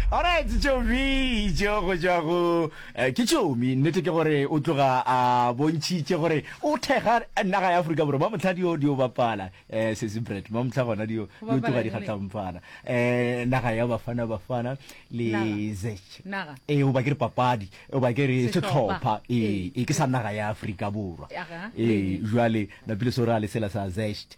Alright, Tšomi tšeo go tšwa go eh, ke Tšomi. Nnete ke gore o tloga a bontšhitše gore o thekga naga ya Afrika Borwa. Mamohla dio dio bapala eh sesi Brett. Mamohla gona dio dio bapala tloga di neng? kgatlampana. Eh naga ya Bafana Bafana le Naga. Zech. Naga. Eh o ba ke re papadi, o ba ke re Sehlopha. setlhopha. Eh, Ee. eh ke sa naga ya Afrika Borwa. Aga. Eh jwale napile so ra lesela sa Zest.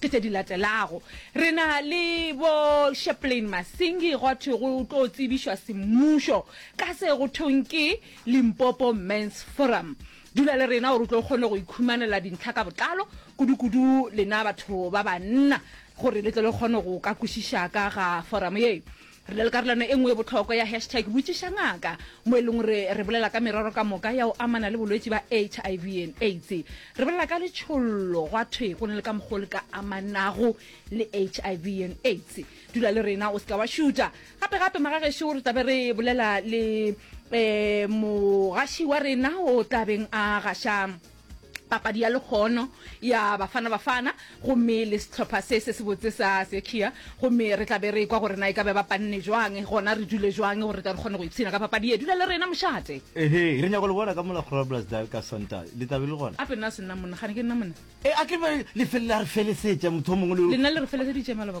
Ke tše di latelago. Re na le bo Sheplane Masingi gwa thwe go tlo tsebišwa semmušo ka se go thweng ke Limpopo Men's Forum. Dula le rena gore o tlo kgone go ikhumanela dintlha ka botlalo, kudu-kudu lena batho ba banna gore le tle le kgone go ka kwešiša ka ga foramo ye. Re na le karolwana e nngwe e bohlokwa ya hashtag Botšiša Ngaka, mo e lego gore re bolela ka merero ka moka ya go amana le bolwetši ba HIV and AIDS. Re bolela ka letšhollo, gwa thwe go na le ka mokgwa o le ka amanago le HIV and AIDS. Dula le rena, o se ka wa šuta. Gape-gape, magagešo, re tla be re bolela le um mogaši wa rena o tla beng a gaša. papadi ya lekgono ya bafana bafana gomme le sehlopha se se sebotse sa sechia gomme re tla be re kwa gore na e ka be ba panne jwang gona re dule jwang gore tla re kgone go ipshina ka papadi ye dula le rena mošate ehe re nyako le bona ka mola groblersdal ka sonta le tla be le gona ape nna se nna monna gane ke nna monna e a ke be le felela re felesetša motho o mongwe le lena le re feleseditše maloba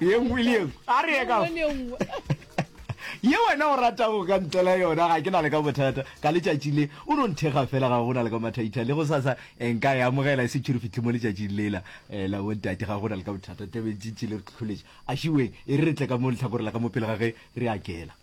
ye nngwe le ye nngwe a re ye ka Nngwe le ye nngwe. ye wena o ratago ka ntela yona ga ke na le ka bothata ka letšatši le o no nthekga fela ga go na le ka mathaitha le go sasa eh, nka e amogela e se tšhoro fitlhe mo letšatšing lela eh, la bontate ga go na le ka bothata tebentšintši le re tlholetše a šiweng e re re tle ka mo letlhakore la ka mo pele ga ge re akela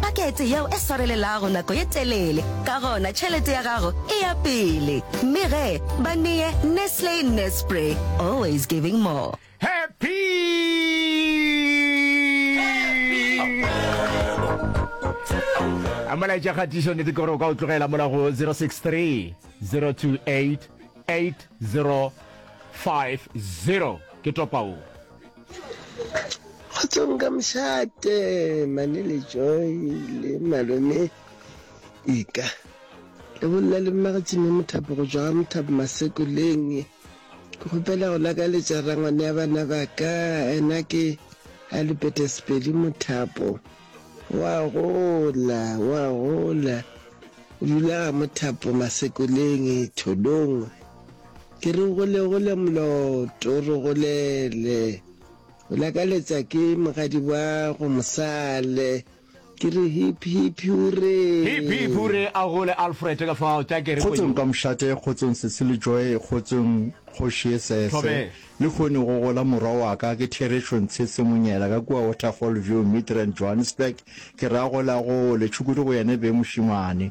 Pakete yeo e swarelelago nako ye telele, ka gona tšhelete ya gago e ya pele. Mme ge ba neye Nestle Nespre, always giving more. Happy! a molaetša kgatišo nete kore o ka o tlogela mola go 063 028 8050 ke topao kgotsong ka mošate mane le joy le malome ika le bolela le mmagatšime mothapo go jwa mothapo masekoleng ke kgopela go lakaletša rangwane ya bana ba ka ena ke a lupete sepedi mothapo wa gola wa gola o dula ga mothapo masekoleng tholong Ke re gole gole moloto re golele O lakaletsa ke mogadi wa go mosale Ke re hip hip huree. Hip hip huree a gole Alfred ka fao tša kere Kgotsong kwenyong. Kamšate Kgotsong Sesi le Joy Kgotsong Kgoši ye Sese Thobela. le kgone go gola morwa wa ka ke Therešo Ntshese Monyela ka kua Waterfall View Midrand Johannesburg ke re a gole a gole tšhukudu go yene beng mošemane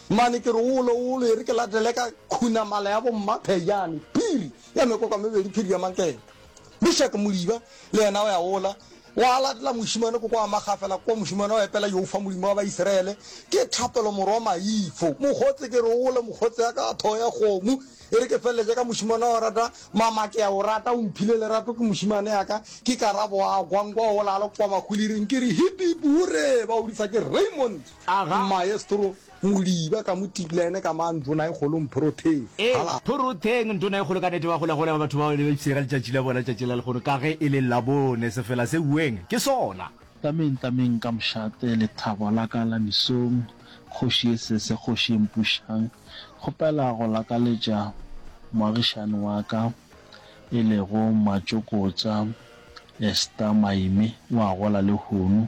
Mane ke re wolo wolo e re ke latele ka khunamala ya bommaphejane, phiri ya mekoko mebedi, phiri ya manketa. Mishak Moliba le yena o ya wola, wa latela mošemane ko kwa magafela kwa mošemane wa epela Jehofa Molimo wa Baisiraele, Ke thapelo morwa maifo, mokgotse ke re wolo mokgotse ya ka ya thogo ya kgomo, e re ke feleletše ka mošemane wa go rata mama ke ya o rata, o mphile lerato ke mošemane ya ka, ke karabo a kwa nkwa wola a le kwa mahuliring, ke re hip hip hurre, ba o bitsa ke Raymond. Maestro Modiba ka mo tibla yene ka mang nduna e kgolo mphorotheng hala. Phorotheng nduna e kgolo ka nete ba gola gola ba batho bao ne ba ipsega letšatši la bona tšatši la lekgono ka ge e le labone sefela se ueng ke sona. Tameng tameng ka mošate lethabo la ka la misong kgoši ye sese kgoši ye mpušang kgopela go lakaletša moagišani wa ka e lego Matšokotša Esther Maime o a gola lehono.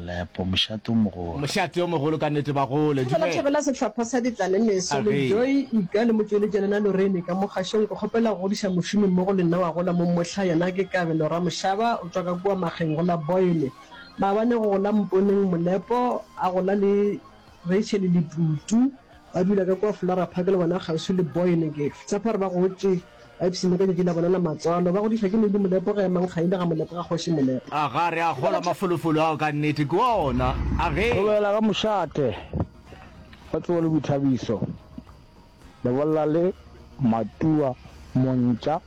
Lepo, mošate o mogolo. Mošate o mogolo ka nnete bagolo. Ke fela thabela sehlopha sa Ditlalemeso, le Joy, Ika, le Motšweletša Lena Lorraine ka mo kgašong. Ke kgopela go godiša mošomi mmogo le nna wa gola mo Mohla, yena ke Kabelo Ramošaba, o tšwa ka kua Mageng go la Boyne, maabane go go la Mponeng, Molepo, a gola le Rachel le Tutu, ba dula ka kua Flora Park le bona kgauswi le Boyne. Ke tshepa gore ba gotše. Ipsene ka tšatši la bona la matswalo, ba godišwa ke Lady Molepo ge Mankgaile ga Molepo ga Kgoši Molepo. Aga re a kgolwa mafolofolo ao ka nnete ke ona a ge. Go bela ga mošate go tsewa le boithabiso, lebolla le Matua Montša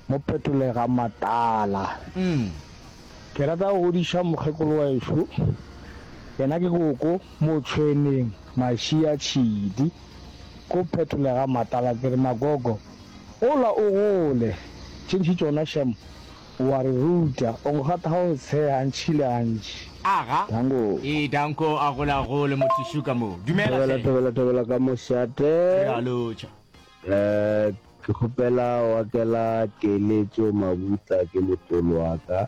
mo Phetolega Matala. Ke rata go godiša mokgekolo wešo, yena ke koko Motšhweneng Mašia Tšhidi ko Phetolega Matala, ke re magogo. Gola o gole. Tše ntši tšona Shem o a re ruta. O nkgotha ga o tshe gantši le gantši. Aga, Danko. Ee, Danko a gola a gole, motho šo ka moo. Dumela hle. Thobela, thobela, thobela ka mošate. Re a lotšha. Ke kgopela wa kela keletšo mabutla ke motolo wa ka.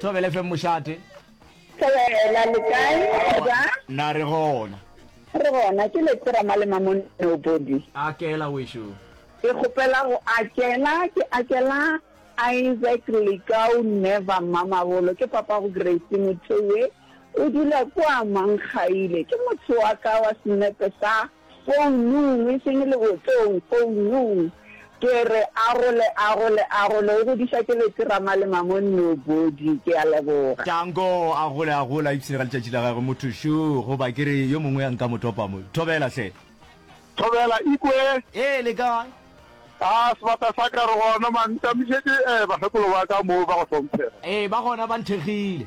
Thobele FM Mošate. Thobela, le kae? Go bjang? Na re gona. Re gona, ke Letera Malema mo Nobody. Akela wešo. Ke kgopela go akela, ke akela Isaac Lekau Never Mamabolo, ke papa go Grace Mothoe, o dula kwa Mankgaile. Ke motho wa ka wa senepe sa Founung, e seng lebotong, founung. Ke re arole, arole, arole, o godiša ke leterama le mamon no body. Ke a leboga. Tanko, a gole, a gole, a ipshine ka letšatši la gagwe, motho šo, goba ke re yo mongwe a nka mo topa mo. Thobela, hle. Thobela, Ikwe! Ee, le kae? A, sebata sa ka, re gona, mang, ntamišetše, eh, bakgekolo ba ka moo, ba go hlomphega. Ee, ba gona, ba nthekgile.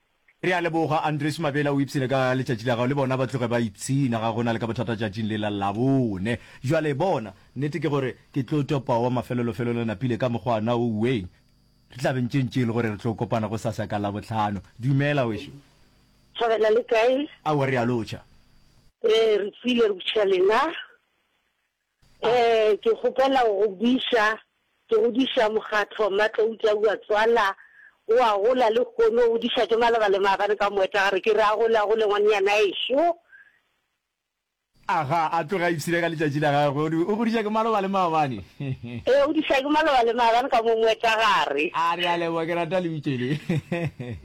Re a leboga Andries Mabela o ipshine ka letšatši la gago le bona ba tloge ba ipshina ga gona le ka bothata tšatšing le la Labone. Bjale bona, nnete ke gore ke tlo topa wa mafelolofelolo napile ka mokgwa na o ueng. Re tla be ntše ntše e le gore re tlo kopana gosasa ka Labohlano. Dumela wešu. Thabela le kae? Aowa re a lotšha. Ee re tswile re butšha lena. Ee, ke kgopela go go buiša. Ke godiša mokgatlo Mmatloutša Ua Tswala o a gola lehono o godiša ke maloba le maabane ka moetlagare ke re a gole a gole ngwanenyana ešo. Aga a tloge a ipshina ka letšatši la gagwe o re o godiša ke maloba le maabane. Ee, o godiša ke maloba le maabane ka mo moetlagare. A re a leboga ke rata lebitso le.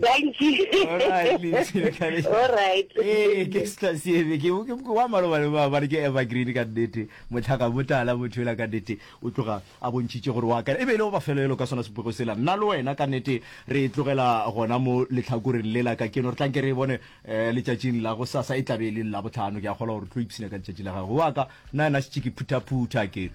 Thank you. Alright, Lindsay, le ka le- Alright. Ee, ke sla sebe ke ke- ke wa maloba le ba bare ke evergreen ka nnete motlhaka motala motho ela ka nnete o tloga a bontšhitše gore wa ka e be e le go bafelo elo ka sona sepoko sela nna le wena ka nnete re e tlogela gona mo letlhakoreng le la ka keno re tlanke re e bone um letšatšing la go sasa e tlabe e le la botlhano ke a kgolwa gore tlo ipshina ka letšatši la gago wa ka nna yena setšiki phuthaphutha ke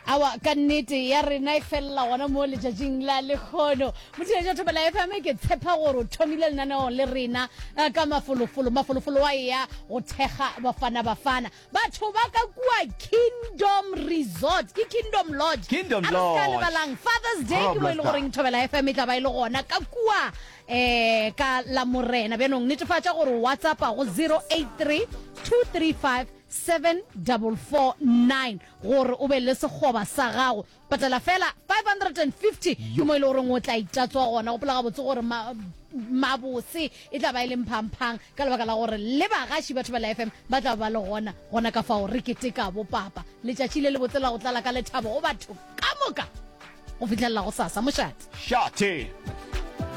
awa ka nnete ya rena e felela gona mo letšatšing la lekgono motheletša thobela fm ke tshepa gore o thomile lenaneong le rena eh, ka mafolofolo mafolofolo wa eya go thekga bafana bafana batho ba ka kua kingdom resort ke kingdom lodge Kingdom A re ska Lodge. lebalang fathers day ke mo e le Roblestar. goreng thobela fm e tla ba e le gona ka kua um ka la morena bjanong netefatša gore whatsapp go 083 235 7449 gore o be le sekgoba sa gago. Patela feela 550, ke mo e le goreng o tla itatswa gona. Gopola gabotse gore ma, mabose e tla ba e le mphang-phang ka lebaka la gore le bagaši ba Thobela FM ba tla ba le gona, gona ka fao re keteka bopapa. Letšatši le lebotse la go tlala ka lethabo go batho ka moka go fihlelela gosasa. Mošate! Shate!